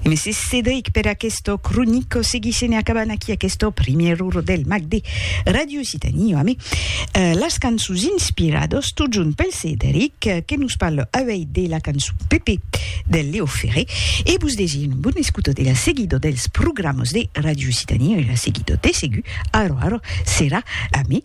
Mès Cedric per aquesto cronico seguissent e acabant aquí aquesto primièr uro del mag de Radio Occitanie amé las cançons inspirados totjorn pel Cedric que nos parle auei de la cançon Pepe del Leo Ferré e vos desir un bon escuto de la seguida dels programas de Radio Occitanie e la seguida de segur aro aro serà amé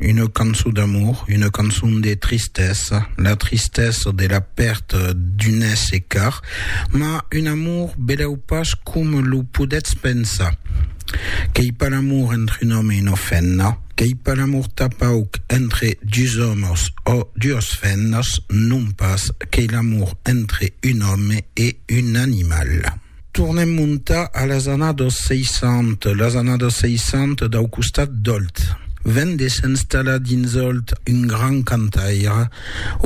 Una cançon d'amor, una cançon de tristesa, la tristesa de la pèrta d'un èsser car, mas un amor belèu pas coma lo podètz pensar. Qu'ei pas l'amor entre un òme e una femna, qu'ei pas l'amor tanpauc entre dus òmes ò duas femnas, non pas, qu'ei l'amor entre un òme e un animal. Tornem montar a las annados 60, las annados 60 dau costat d'Òlt. Ven de s'installar dins Òlt un grand cantaire,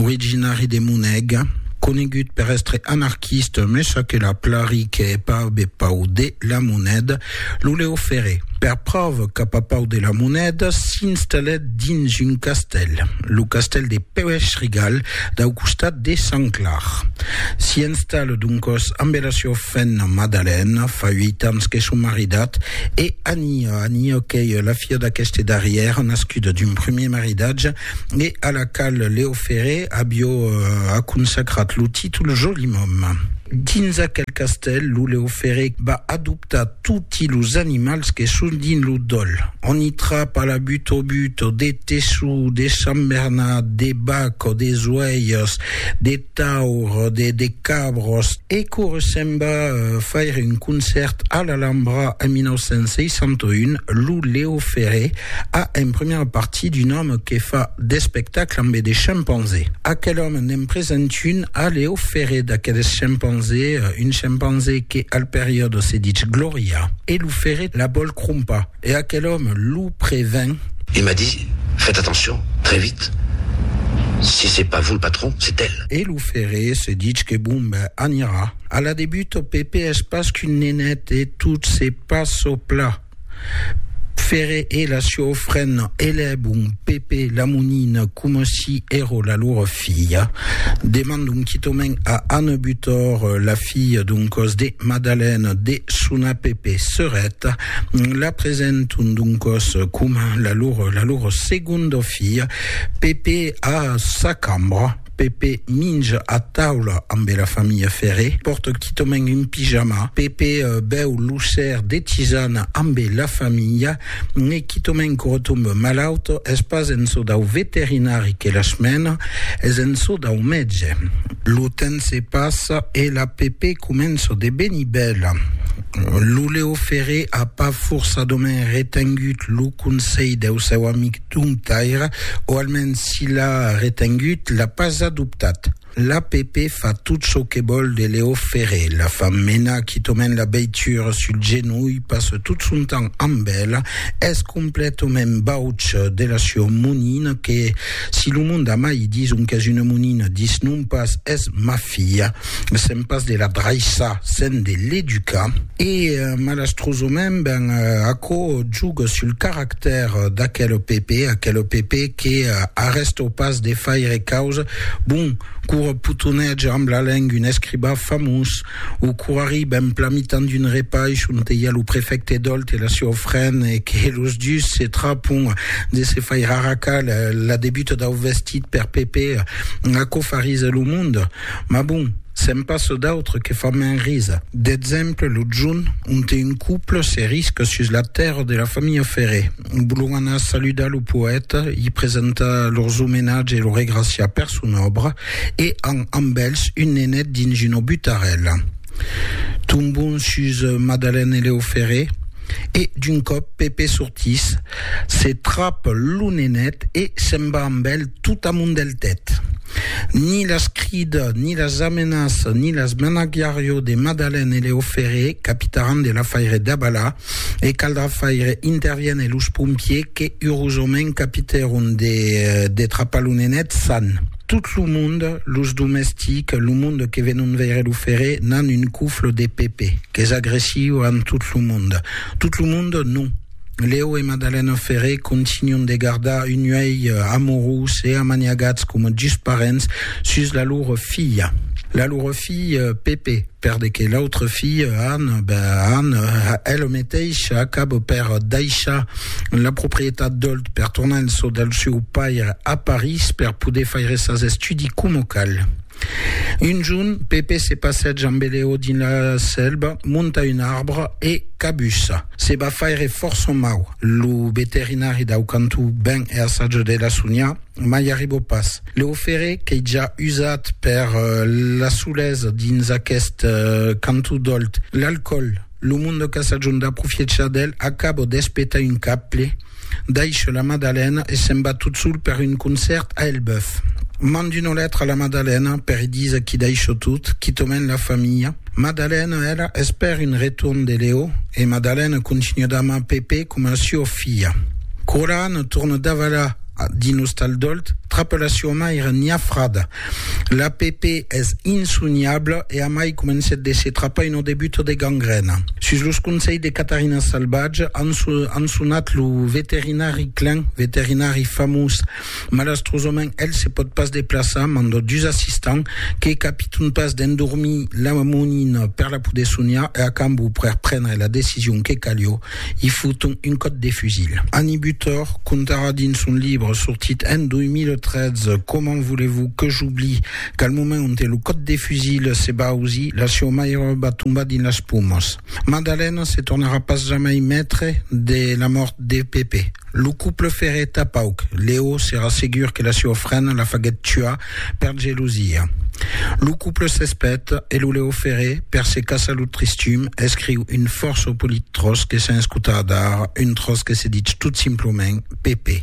originari de Moneg, conegut per èstre anarquista, me ça que la plari que hè pas be pau de la moneda, Lo Leo Ferré, per pròva cap a Pau de la Monèda, s'installèt dins un castèl, lo castèl de Pèuèch-Rigal, dau costat de Sant Clar. S'i installa doncòs ambe la siua femna Madalèna, fa uèit ans que son maridat, e Ania, Ania qu'ei la filha d'aqueste darrièr, nascuda d'un primièr maridatge, e a la qual Leo Ferré avió aconsacrat lo títol Joli Mòme. Dins aquel castèl, lo Leo Ferré va adoptar toti los animals que son dins lo dòl. On i trapa la butobuto, de tessó, de sambernat, de bac o de zoèirs, de. taur, de de cabros. E quora se'n va faire un concèrt a l'Alhambra en 1961, lo Leo Ferré a en primièra partie d'un òme que fa d'espectacle ambe de chimpanzés. Aquel òme n'en present un a Leo Ferré d'aqueles chimpanzés, un chimpanzé que al periòde se ditz Glòria, e lo Ferré la vòl crompar. E aquel òme lo prevèn. E m'a dit, Fètz atencion, très vite, si c'est pas vous le patron, c'est elle. E lo ferré se ditz que bon ben anirà. A la debut ò Pèpe es pas qu'un nenet e tot se passe au plat. Ferré e la siò frena elèbon Pèpe la monina coma si èró la lor filha. Demandon quitòment a Anne Butor, la filha d'un còs de Madalène, de sonar Pèpe serèt. La presenton doncòs coma la lor, la lor segonda filha. Pepe a sa cambra. Pepe minja a taula ambe la familha Ferré. Pòrta quitament un pijama. Pepe bèu lo ser de tisana ambe la familha. E quitament que retombe malaut. Es pas en çò dau veterinari que las mena, es en çò dau mètge. Lo temps se passa e la Pepe comença de venir bèla. Lo Leo Ferré a pas forçadament retengut lo conselh deu seu amic Domptaire, o almens si l'a retengut, l'a pas adoptat. L'APP fa tot çò que vòl de Leo Ferré, la fa menar quitament la veitura sul genolh, passa tot son temps amb ela, es completament bauç de la sua monina que, si lo monde a mai dison qu'es una monina, dis non pas, es ma filha. sèm pas de la draissar sèm de l'educar. E malastrosament ben aquò juga sul caractèr d'aquel PP, aquel PP que arrèsta pas de faire causa, bon, quora potonètge amb la lenga un escribà famós, o quora arriba en plan mitan d'un repaish onte i a lo prefècte Dolt e la seua frena e que los dus se trapon de se faire arracar la debuta dau vestit per PP, aquò farise lo monde. Mas bon, se'n passa d'autres que fan mens risa. D'exemple, lo junh, onte un couple se risca sus la tèrra de la familha Ferré. Volon anar saludar lo poèta, i presentar lors omenatge e lo regraciar per son òbra, e an amb elhs un nenet dins una butarèla. Tombon sus Madalène e Leo Ferré. E d'un còp Pepe sortís, se trap lo nenet e se'n va amb el tot amont del tèt. Ni las crida, ni las amenaça, ni las menagiarió de Madalen e Leo Ferré, capitaràn de l'afaire Dabala, e caldrà faire interviene los pompiers que urosament capitèron de trapar lo nenet san. Tot lo monde, los domestics, lo monde que venon veire lo ferre, n'an un cofle de Pepe, qu'es agressiu amb tot lo monde. Tot lo monde, non. Leo e Madalena Ferre continuan de gardar un uèi amorós e amaniagats coma dus parents sus la lor filha. La lor filha Pepe. Per de que l'autre fille, Anne, ben Anne, elle meteisha acaba per daishar la proprietat d'Olt per tornar en çò del seu paire a París per poder faire sas estudis coma cal. Un jorn, Pepe se passeja amb Eleo dins la selva, monta un arbre e cabussa. Se va faire fòrça mau. Lo veterinari dau cantó ven e assaja de la sonhar, mai arriba pas. Lo ferre qu'ei ja usat per la solesa dins aqueste canton d'Olt. L'alcòl, lo monde qu'a sajon d'aprofiechar d'el, acabo d'espetar un caple, daisho la Madalena e se'n va tot sol per un concèrt a Elbèuf. Mand una letra a la Madalena per i díser qu'i daisho tot, quitament la familha. Madalena, ela, espèr un retorn de Leo e Madalena continua d'amar Pepe coma a sua filha. Quora Anna torna davalar Dins Ostal Dolt, trapa la siua maire Nia Frada. La Pepe es insoniabla e amai comencèt de se trapar una debuta de gangrèna. Sus los conselhs de Catarina Salvatge, an sonat lo veterinari Klein, veterinari famós. Malastrosament, el se pòt pas deplaçar, manda dus assistants que capiton pas d'endormir la monina per la poder soniar e a cambó per prendre la decision que calió, I foton un còt de fusil. Annie Butor contarà dins son libre sortit en 2013 Comment voulez-vous que j'oublie qu'al moment onte lo còt de fusil se va ausir, la sieu mairòba va tombar dins las pomas. Madalena se tornarà pas jamai maitre de la mòrt de Pepe. Lo couple ferreta pauc. Leo serà segur que la sieu frena la faguèt tuar Per gelosia. Lo couple s'espet e lo Leo Ferré, per se caçar lo tristum, escriu un fòrça polit tròç que sens cotar dar, un tròç que se ditz tot simplament Pepe.